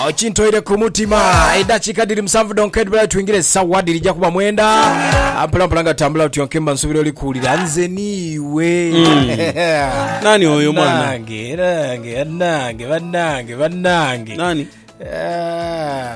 okintoire ku mutima edakika dhiri musanvu donka edibulayo twingire esawa dhirija kuba mwenda mpolampola nga tambula otyonke mba nsubira oli kuwulira nze niiwe Nani oyo mwana? Banange, banange, banange, banange, banange. Nani? Ah.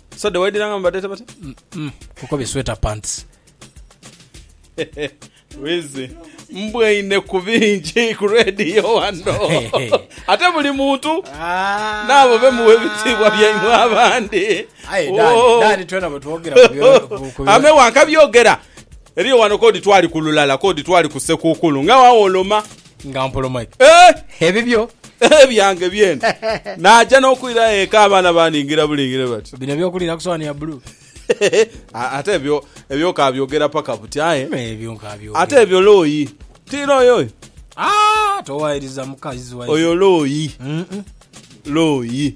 So de waidira nga mubadeta bata? Kuko bi sweater pants. Wizi mbwaine ku bingi ku radio wano ate buli muntu ah. naabo bemuwa ebitiibwa byaimwe abandi oh. amewanka byogera eriyo wano kodi twali kululala kodi twali kusekukulu nga wawoloma Nga mpoloma ki? Eh! Ebibyo. Eh, byange byene. Naaja n'okwirayo eka abaana baningira bulingire bati. Bino eby'okuliira ku sowaani ya bbulu. A- Ate ebyo ebyo kaabyogera paka buti aye. Me ebyo nkaabyogera. Ate ebyo looyi. Ti looyi oyo? Ah, towaayiriza mukazi waife. Oyo looyi. Mm-mm. Looyi.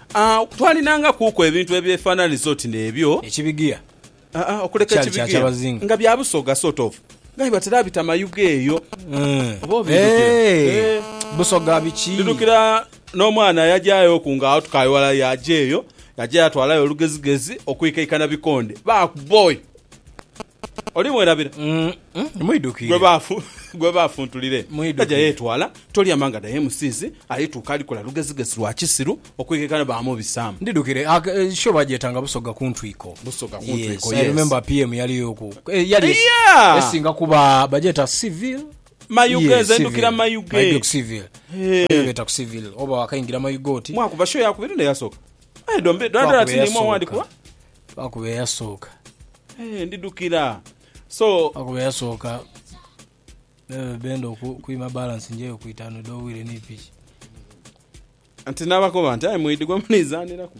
Agho twalinangakuku ebintu ebyefaananiza oti n'ebyo. Ekibigia okuleka kyali kya ekibigia kyabazinga. nga bya busoga sort of nga aye batera bita mayuge eyo oba obidhukira? Eeh, Eeh. busoga biki? Ndidhukira n'omwana yajayo oku nga agho tukali ghalala yaja eyo yaja yatwalayo olugezigezi okuikaikana bikonde. Baaku boy! Oli mwerabira? Gwe baafu, gwe baafu ntulire. Aja yeetwala, tolyama nga daye musiisi, alituuka alikola lugezigezi lwa kisiru okwekeka ni baamubisaamu. Ndidhukire show bagyetanga Busoga ku ntwiko. Busoga ku ntwiko, yes. I remember PM yaliyoku. Yali esinga kuba bagyeta Civil. Mayuge, nze ndukira Mayuge. Mayuge ku Civil. Mayuge beeta ku Civil. Oba wakaingira Mayuge oti. Mwakuba show ya kubiri n'eyasooka? Aye dhombi, dala dala tiniimu awandikuwa? Lwakuba eyasooka. Ee, ndidhukira. So. Lwakuba eyasooka. Bebe benda okuima balance njeyo ku itaanu edh'obwire ni piki. Nti nabakoba nti, Aye mwidhi gwe munizaniraku.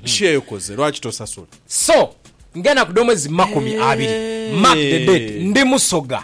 Share ekoze, lwaki tosasula? So, ng'enaku dh'omwezi makumi abiri mark the date, ndi Musoga.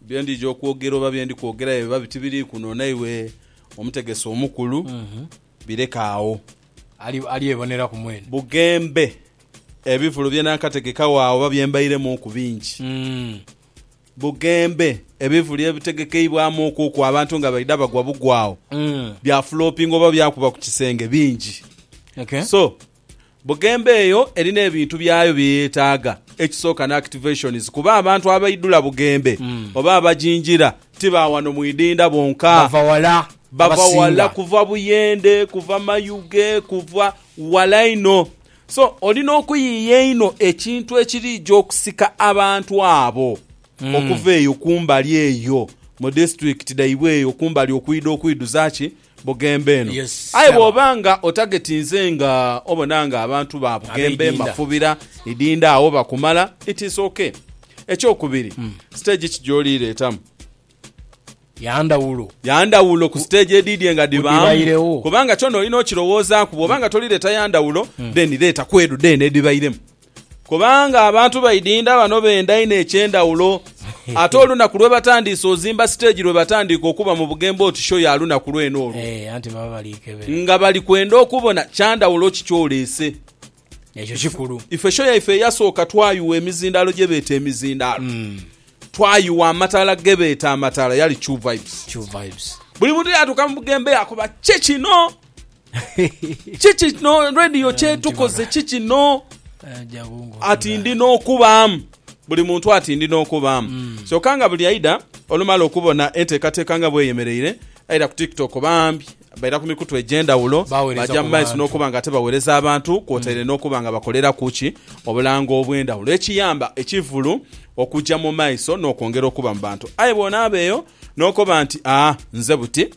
Bye ndidha okwogera oba bye ndi kwogera bye biba bitibiri kunona iwe Omutegesi Omukulu, bireke agho. Ali, alyeboneraku mwene. Bughembe, ebivulu bye naakategekagho agho oba bye mbairemuuku bingi. Bughembe, ebivulu ebitegekeibwamu okuku abantu nga baidha bagwa bugwagho, bya fuloopinga oba byakuba ku kisenge, bingi. So, Bugembe eyo erina ebintu byayo bye yeetaaga. Ekisooka ni activations kuba abantu abaidhula Bugembe oba abagingira ti ba wano mu idinda bonka. Bava wala Bava abasinga. wala kuva Buyende, kuva Mayuge, kuva wala inho. So oli n'okuyiiya einho ekintu ekiriija okusika abantu abo okuva eyo kumbali eyo mu disitulikiti dhaibwe eyo kumbali okwidha okwidhuza ki? Bugembe eno. Aye bw'oba nga otagetinze nga obona nga abantu ba Bugembe, Mafubira, Idinda agho bakumala, it is ok. Ekyokubiri, stage ki gy'oli ireetamu? Ya ndhawulo. Ya ndhawulo ku stage edhidhie nga dhibaamu. Kubanga kyona olina okirowoozaaku. Bw'oba nga tolireeta ya ndhawulo, then leeta ku edho dheene edhibairemu. Kubanga abantu baidinda bano benda inho eky'endhawulo. Ate olunaku lwebatandiise ozimba siteegi lwebatandiika okuba mu bugembo oti sho ya lunaku lwene olwo. Ee, anti baba bali kebera. Nga bali kwenda okubona kya ndhawulo ki ky'oleese. Ekyo kikulu. Ife sho yaife eyasooka twayugha emizindaalo gye beeta emizindaalo. Twayugha amataala ge beeta amataala yali True Vibes. True Vibes. Buli muntu yaatuuka mu bugembo yakoba, Ki kino? Kiki kino radio kyetukoze kikino ati ndi nokubaamu buli muntu ati ndi nokubaamu mm. kyoka nga buli aida olumala okubona enteekateeka nga bweyemereire aida ku tiktok bambi baira ku mikutu egyendawulo bajja mu maiso n'okuba nga ate bawereza abantu kwotaire mm. n'okuba nga bakolera kuki obulango obw'endawulo ekiyamba ekivulu okujja mu maiso n'okwongera okuba mu bantu aye bwonaabeeyo n'okuba nti aa ah, nze buti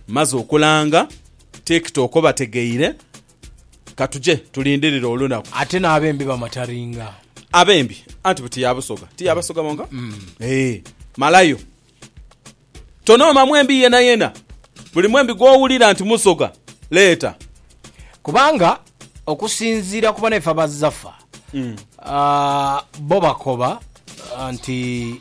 Mmaze okulanga TikTok obategeire, ka tuje tulindirire olunaku. Ate n'abembi bamataringa. Abembi anti buti ya Busoga, ti ya Basoga bonka? Eeh, malayo. Tonooma mwembi yenayena. Buli mwembi gw'owulira nti Musoga, leeta. Kubanga okusinziira ku banaife aba Zafa, bo bakoba nti.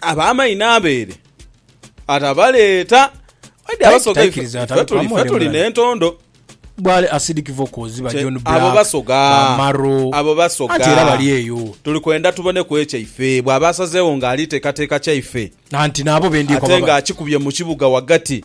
Ab'amaini n'abeere atabaleeta. Aye abasoga ife, Taikiriza ife atali tuli, ife tuli bamwolebera. n'entondo. Bwale acidic vocals ba Kye- John Black abo basoga. ba Maro Abo basoga. anti era bali eyo Tuli kwenda tuboneku ekyaife. Bw'aba asazeewo ng'ali teekateeka kyaife, anti naabo bendyeko ate baba ng'akikubye mu kibuga ghagati,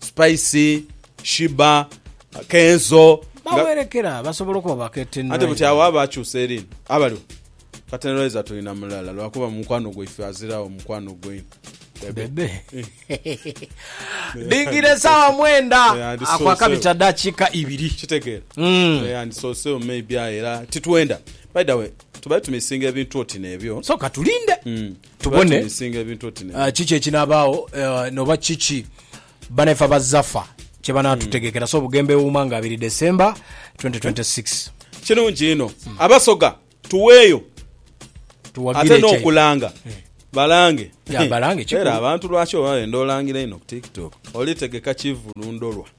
Spice, Sheebah, Kenzo. Nga- Bawerekera basobola okuba ba Curtain Anti buti agho Raiser. aba akyusa eri ino. Abaliwo. Curtain Raiser tulina mulala lwakuba mukwano gwaife aziragho mukwano gwe. Bebe. Dhingire esaawa mwenda Eh, and so, akwa so. kabita dakiika ibiri. Kitegeera. Mm. Eh, and so so maybe aye era titwenda. By the way, tubaye tumisinga ebintu oti nebyo. So katulinde. Mm. tubone kiki ekinabaagho noba kiki banaife abazafa kyebanatutegekera so Bugembe Ewuuma nga 2 December 2026. Kirungi inho abasoga tuweeyo ate n'okulanga balange era abantu lwaki oba wenda olangira inho ku tiktok olitegeka kivulu ndholwa.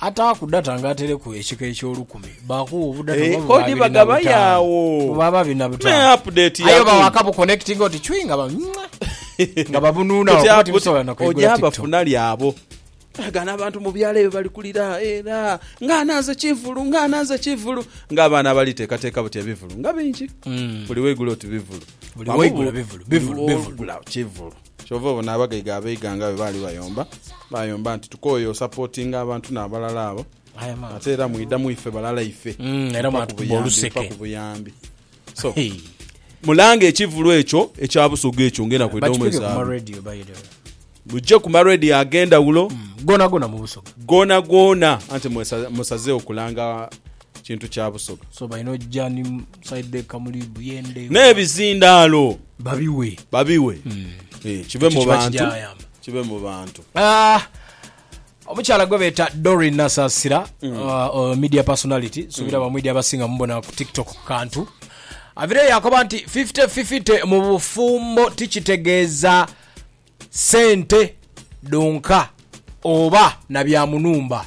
Ataaku data nga ateleku ekika eky'olukumi, baakugha obudata Eeh, oba buba kodi abiri na bagaba butaanu. yawo. Buba ababiri na Me butaanu. update Aye oba yaku. waaka buconnectinga oti chwii nga ba mwah, nga babunuuna Kati wakuba apo tibisobola na kwigula oja TikTok. bafuna lyabo aga nabantu mubyalo ebyo bali kulira era nga ananze kivulu nga ananze kivulu nga abaana abali tekateka buti ebivulu nga bingi buli weigula oti bivulu Mm. Buli Wamu weigula bu- bivulu, bivulu, buli bivulu. wogula kivulu Kyova obona abagaiga abeighanga bwe baali bayomba, baayomba nti tukooye osapotinga abantu n'abalala abo ate era mwidha mu ife balala ife nfa ku buyambi. So, mulanga ekivulu ekyo ekya Busoga ekyo ng'enda kwidha mu mwezi Abril. Mugye ku ma radio ag'endhawulo goonagoona anti mwesazeewo kulanga... kintu kya busoga. So balina ojja ni side bag kamuli buyende. N'ebizindaalo. Babiwe. Babiwe. Eh, kive mu bantu. Kive mu bantu. Ah! omukyala gwe beeta dorin nasasira mm. uh, uh, media personality subira mm. bamwidi abasinga mubona ku tiktok kantu avire yakoba nti 5050 mu bufumbo tikitegeeza sente donka oba na byamunumba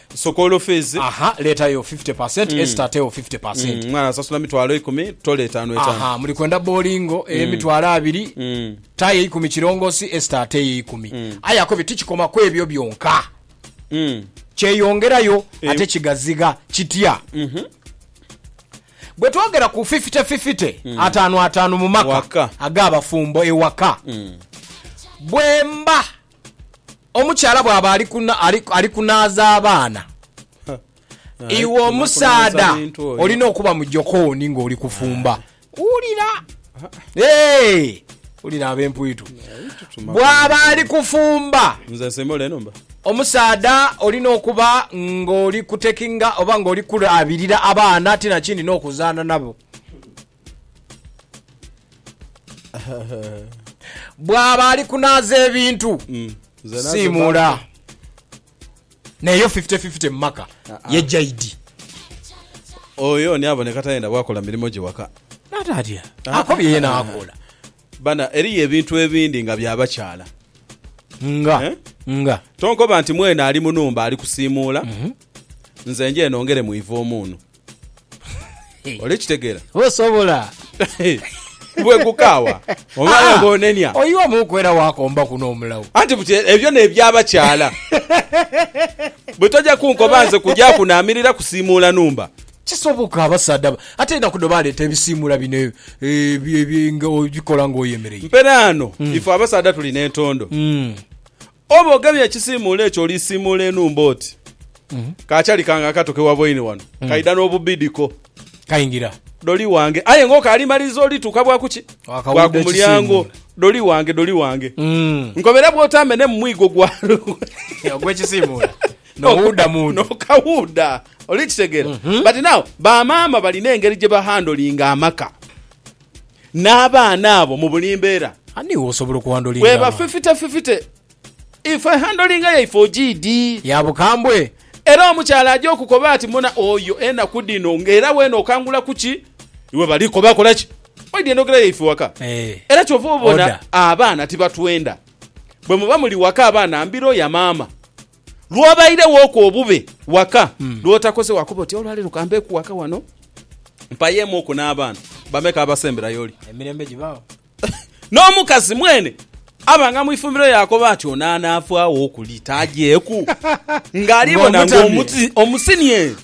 Sukuulu fiizi. Aha, leetayo fifty per cent, Esita ateewo fifty per cent. Omwana asasula mitwalo ikumi, tole etaanu etaanu. Aha, muli kwenda bowlingo ey'emitwalo abiri, tayo eikumi kirongosi, Esita ateeyo eikumi. Aye akobye tikikoma ku ebyo byonka. Kyeyongerayo ate kigazigha. Kitya? Bwe twogera ku fifite fifite, ataanu ataanu mu maka ag'abafumbo ewaka, bwemba. Omukyala bwaba ali kuna- ali- ali kunaaza abaana, Aye iwe kunakunaaza omusaadha bintu oyo. olina okuba mu jokooni ng'oli kufumba. Wulira! Hey! Wulira ab'empwitu. Tutuma Bwaba ali kufumba, Nze nsimbula enhumba. omusaadha olina okuba ng'oli kutekinga oba ng'oli kulabirira abaana ti nakindi n'okuzaana nabo. bwaba ali kunaaza ebintu Mm. Nze nazo simuula naye yo 50-50 mu maka Ah, ah. ye jaidi ba- Oyo ni aboneka tayenda bwakola mirimo gye waka. natatya Ah, ako byeye ah, nakola Bana eriyo ebintu ebindi nga bya bakyala. nga Eh? nga Tonkoba nti mwene ali munumba ali kusimuula. Nze nje nongere mwiva omuunu. Oli kitegera? Osobola. Bwe gukaawa. Omala ah, gonenia. Oyiwa mukwera wakomba kuno omulawo. Anti buti ebyo ne byabakyala. Bwe toja kunkoba nze kuja kunamirira kusimuula numba. Kisoboka abasaadha ate enaku do baleeta ebisiimula bino ebikola eh, ng'oyemereire. Mperaano mm. ife abasaadha tulina entondo mm. Oba ogemye ekisiimuula ekyo olisiimuula enhumba oti, Ka chali kange akato ke waboine wano kaidha n'obubidhiko. Kaingira. Doli wange. Aye ng'okaali maliriza olituuka bwa ku ki? Bwa ku mulyango. Doli wange, doli wange. Nkobera bw'otaamenemu mwigo gwa lugwe. Ogw'ekisiimuula. N'owuudha mu ndhu. N'okawuudha. Oli kitegeera? But now, ba maama balina engeri gye ba handlinga amaka. n'abaana abo mu buli mbeera. Ani w'osobola okuhandolinga abaana? Bwebafifitefifite, ifwe ehandolinga yaife ogiidhi? Ya bukambwe. Era omukyala aja okukoba ati, Muna oyo enaku dhino nga era weena okangula ku ki? Iwe bali koba akola ki? Oidha endhogera yaife waka. Era kyova obona abaana tibatwenda. Bwemuba muli waka abaana mbiro ya maama. Lw'obairewoku obube waka lw'otakoze wakoba oti, Olwaleero ka mbeeku waka wano mpayeemu oku n'abaana. Bameka abasembera y'oli? Emirembe gibaagho. N'omukazi mwene abanga mu ifumbiro yaakoba ati, Ono anaafaawo okuli tajeeku ng'alibona ng'omuti omusinie.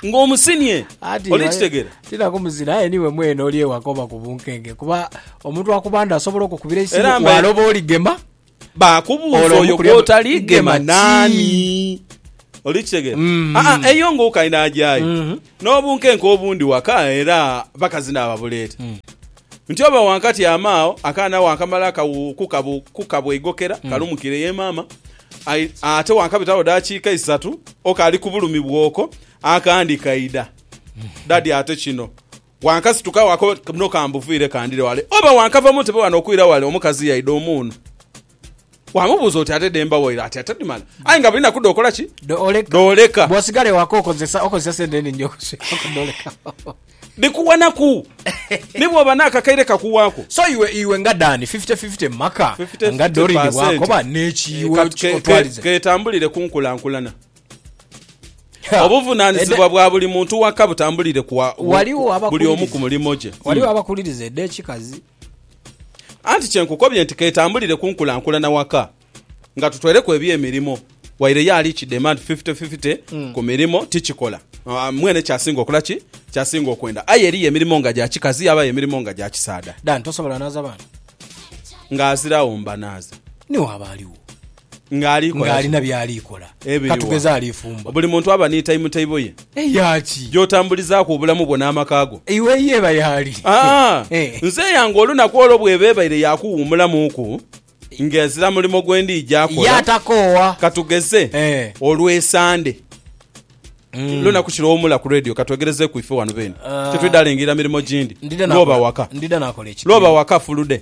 Ng'omusinie. Oli kitegera? Tinaku muzira aye niiwe mwene oli ewaka oba ku bunkenke kuba omuntu akubanda asobola okukubira eisimu, waaloba oligema. baakubuuza oyo gw'otali gema naani. Oli kitegera? Mm. Aa, ah, eyo nga okali n'agyayo mm-hmm. n'obunkenke obundi waka era bakazi naababuleeta mm. nti oba wankatyama agho akaana wankamala kukabweigokera mm. kalumukire ye maama ate wankabitawo dakiika isatu okali ku bulumi bwoko akandi kaida mm. dadi ate kino Wankasituka wako muno kambuviire kandhire wale, oba wankava mu ntebe wano okwira wale omukazi yaidha omuunu. Wamubuuza oti, Ate dhe mba waire? Ati, Ate dhimala. Aye nga buli naku dh'okola ki? Dhooleka. Bw'osigala ewaka okozesa okozesa sente enhingi okusweraku dhooleka. Dhikuwa naku ni bw'oba n'akakaire kakuwaako. So iwe iwe nga Dani fifty fifty mu maka nga Doreen bw'akoba n'ekiiwe otwalize. Keetambulire ku nkulankulana. Obuvunanizibwa bwa buli muntu waka butambulire ku buli omu ku mulimo gye. Waliwo abakuliriza eda ekikazi. Anti kyenkukobye nti ketambulire kunkulankulana waka nga tutweleku ebyemirimo waire ye ali kidema nti fifite fifite mm. ku mirimo tikikola ah, mwene kyasinga okola ki kyasinga okwenda aye eriyo emirimo nga gya kikazi yabayo emirimo nga gya kisaada dan tosobola naza baana nga azirawo mbanaza niwaba aliwo Ng'ali kola ki? ng'alina by'ali kola. Ebiri Ka wa? tugeze ali fumba. Buli muntu aba ni taimu-taibo ye Eya ki? gy'otambulizaaku obulamu bwo n'amaka go. Iwe ye eba y'ali. Aa, Eh. nze yange olunaku olwo bw'eba ebaire ya kuwuumulamuuku ng'ezira mulimo gwe ndiija Ye kola. atakoowa. Ka tugeze Eh. olw'Esande. Lunaku ki lw'owuumula ku leediyo? Ka twegerezeeku ife wano beene. Ah. Titwidha lengirira mirimo gindi. Ndidha lw'oba nakola- waka. Ndidha nakola ekigere. Lw'oba waka fulude.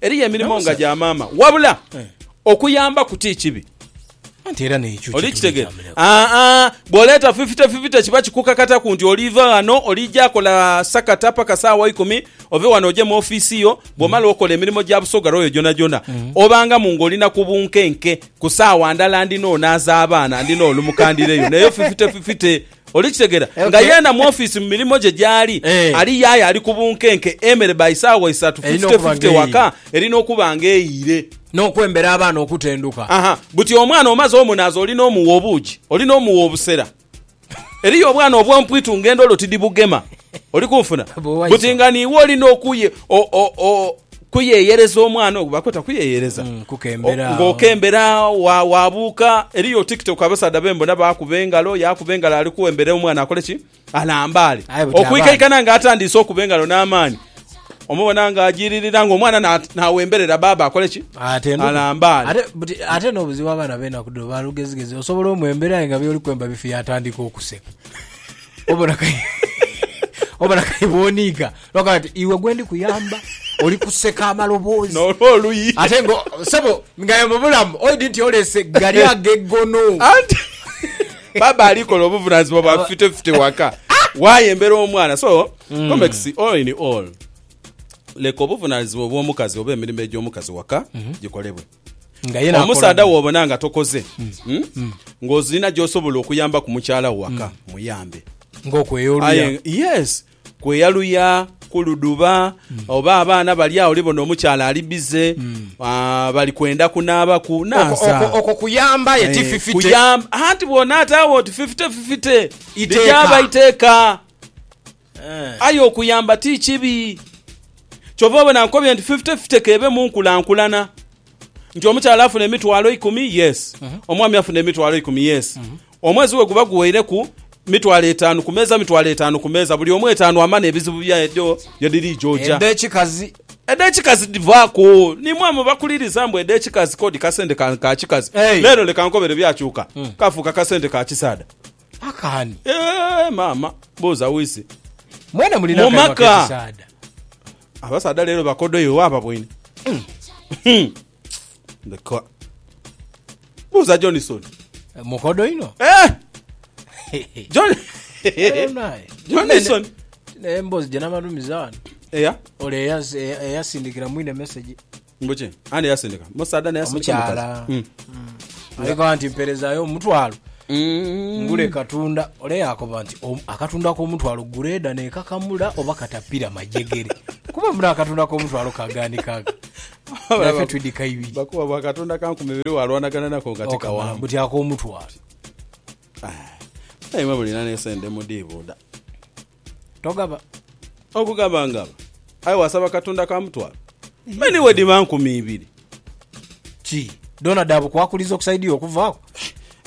Eriyo emirimo nga gya maama, wabula okuyambaku ti kibi. Oli kitegera? Aa, bw'oleeta fifite fifite kiba kikukakataku nti oliiva ghano oliija kola sakata paka saawa ikumi, ove ghano oje mu ofiisi yo. Bw'omala okola emirimo gya Busoga Royal gyonagyona, obangamu ng'oli na ku bunkenke. Ku saawa ndala ndina onaaza abaana, ndina olumuka ndireyo. N'eyo fifite fifite. Oli kitegera nga yena mu office mu mirimo gye gyali ali yaye ali ku bunkenke emere by saawa isatu 50 50 waka erina okuba nga eyiire. Nokwembera abaana okutenduka. Aha buti omwana omaze omunaaza olina omuwa obuugi olina omuwa obusera eriyo obwana obwompwitu nga endolo tidibugema oli kunfuna buti nga niiwe olina okuye o o o Kuyeyereza omwana ogwo bakweta kuyeyereza Mm, kukembera O- agho. ng'okembera agho wa- wabuuka eriyo tiktok abasaadha bembona bakuba engalo yakuba engalo ali kuwembera omwana akole ki alambaale Aye buti okwikaikana nga atandiise okuba engalo n'amaani omubona nga ajiririra ng'omwana na- nawemberera baaba akole ki Ate no- alambaale ate buti- ate n'obuzibu abaana b'enaku dhino balugezigezi osobola omwembera aye nga byoli kwemba bifi yatandika okuseka Obalakayi bwoniiga lwakuba ati iwe gwendi kuyamba oli kuseka amaloboozi n'olwo oluyi ate nga sebo nga mu bulamu oidi nti olese gali ag'eggono. Anti baba ali kola obuvunaanyizibwa bwa fitefite waka waayembera omwana. So hmm. Comex all in all leka obuvunaanyizibwa obw'omukazi oba emirimo egy'omukazi waka mhm. gikolebwe. Omusaadha wobona nga tokoze ng'ozirina gy'osobola okuyamba ku mukyala wo waka, muyambe. Ng'okweya oluya. Aye yes kweya luya kuludhuba oba abaana bali agho olibona omukyala ali bize ah, bali kwenda kunaabaku naasa. Okwo- okwo kuyamba aye ti Eh, fifite. kuyamba- anti bw'onaata agho oti fifite fifite Iteeka. ligyaba iteeka. Aye okuyamba ti kibi. Kyova obona nkobye nti fifty fifty k'ebe mu nkulankulana. Nti omukyala afuna emitwalo eikumi, yes. Omwami afuna emitwalo eikumi, yes. Omwezi we guba guweireku, mitwalo etaanu ku meeza, mitwalo etaanu ku meeza. Buli omu etaanu amane ebizibu byae edho ye dhiri joja. Edh'ekikazi? Edh'ekikazi dhivaaku. Ni mwe amubakuliriza mbu edh'ekikazi k'odi kasente ka kikazi. Leero leka nkobere byakyuka, kafuuka kasente ka kisaadha. Maka ani? Eeh maama buuza wise. Mwena mulina akanwa Mumaka. kekisaadha. Abasaadha leero bakodo iwe waaba bwine. Hmm. Leka. Buuza Johnson. Mukodo inho. Eh! John. Naye. Johnson. Naye emboozi gye namalumiza wano. Eya? Ole eyas- eya- eyasindikira mwine message. Mbuki? Ani yasindika? Musaadha naye asindika omukazi. Omukyala. Mm. Mm. Aligamba nti mperezayo omutwalo Mm. ngule katunda ole yakoba nti "Om- akatunda k'omutwalo gureeda nekakamula oba katapira majegere kuba muno akatunda k'omutwalo kagaanikaga nafe twidika ibiri Bakuba bwa katonda ka nkumi ibiri walwanagana nako nga Okamala tikawamu. mbuti ak'omutwalo Naye mwe mulina n'esente mudiibuuda. togaba. Okugaba ngaba, aye wasaba Katonda ka mutwalo, me ni bwedhiba nkumi ibiri. Ki, dhoona dha bukwakulizo okusaidhia okuvaaku?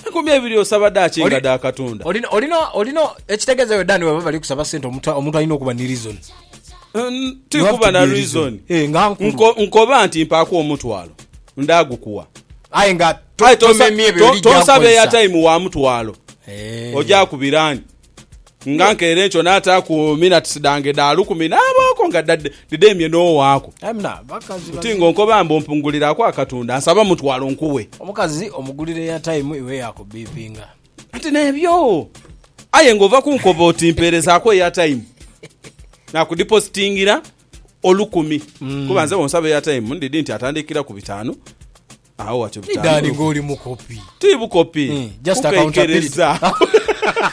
Enkumi ebiri osaba dhaaki nga dha Katonda? Olina, olina, olina, ekitegeeza iwe Dan bwebaba bali kusaba sente omuntu, omuntu alina okuba ni reason. N, ti kuba na reason. Eh, nga nkulu. Nko, nkoba nti mpaaku omutwalo, ndaagukuwa. Aye nga Aye tonsa, tomemye ebyo to, byoli tonsabe gy'akukozesa. airtime wa mutwalo. Eh. Ogyakubira ani? Nga nkeire nkyo naataaku minatisi dhange dha lukumi naabooko nga dhidheemye n'owaaku. Buti ng'onkoba mbu mpunguliraaku akatunda, nsaba mutwalo nkuwe. Omukazi omugulira eyatayimu iwe yaakubbipinga. Nti n'ebyo aye ng'ova kunkoba oti mpeerezaaku eyatayimu, naakudipositingira olukumi. Kuba nze bw'onsaba eyatayimu ndidhi nti atandikira ku bitaanu, agho watyo bitaanu lukumi. Ti bukopi, kukekereza.